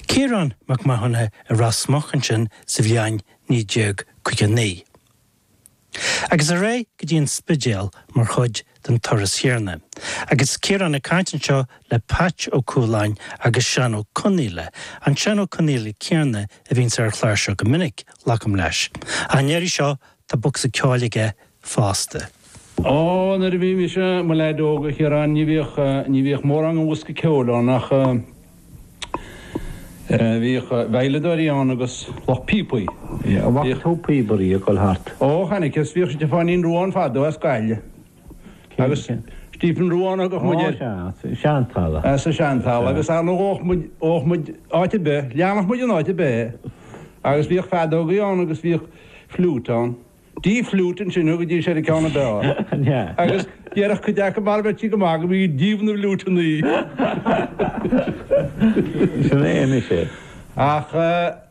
Ciarán Mac Mathúna i Ros Muc ansin sa bhliain 1959. Agus ar aghaidh go dtí an Spidéal mar chuid den turas chéanna. Agus Ciarán ag caint anseo le Peait Ó Cualáin agus Seán Ó Conaola, an Seán Ó Conaola céanna a bhíonns ar an chlár seo go minic, glacaim leis. Ach an iarraidh seo, Tá bocsa ceoil aige fosta. Ó, nuair a bhí mise, mo leaid óg, a Chiaráin, ní bhíodh, ní bhíodh mórán den bhosca ceoil ann ach, eh, bhíodh veidhleadóirí ann agus lucht píopaí. Bhíodh. Bhfaca tú píobaire ag dul thart? Ó, chonaiceas. Bhíodh Stiofáinín Ruane fadó as Gaillimh. agus Stephen Ruane a thugadh muid air. Sa Seantalamh. Sa Seantalamh agus ar ndóigh ghabhfadh muid, ghabhfadh muid áit ar bith, leanfadh muid in áit ar bith é agus bhíodh feadógaí ann agus bhíodh fliúit ann. D fliúit ansin a thugaidís ar an gceann ar bith ann agus déarfadh cuid aca mar a bheirtí go maith go mbí díobh na bhfliúit anoí. Sin é anois é. Ach.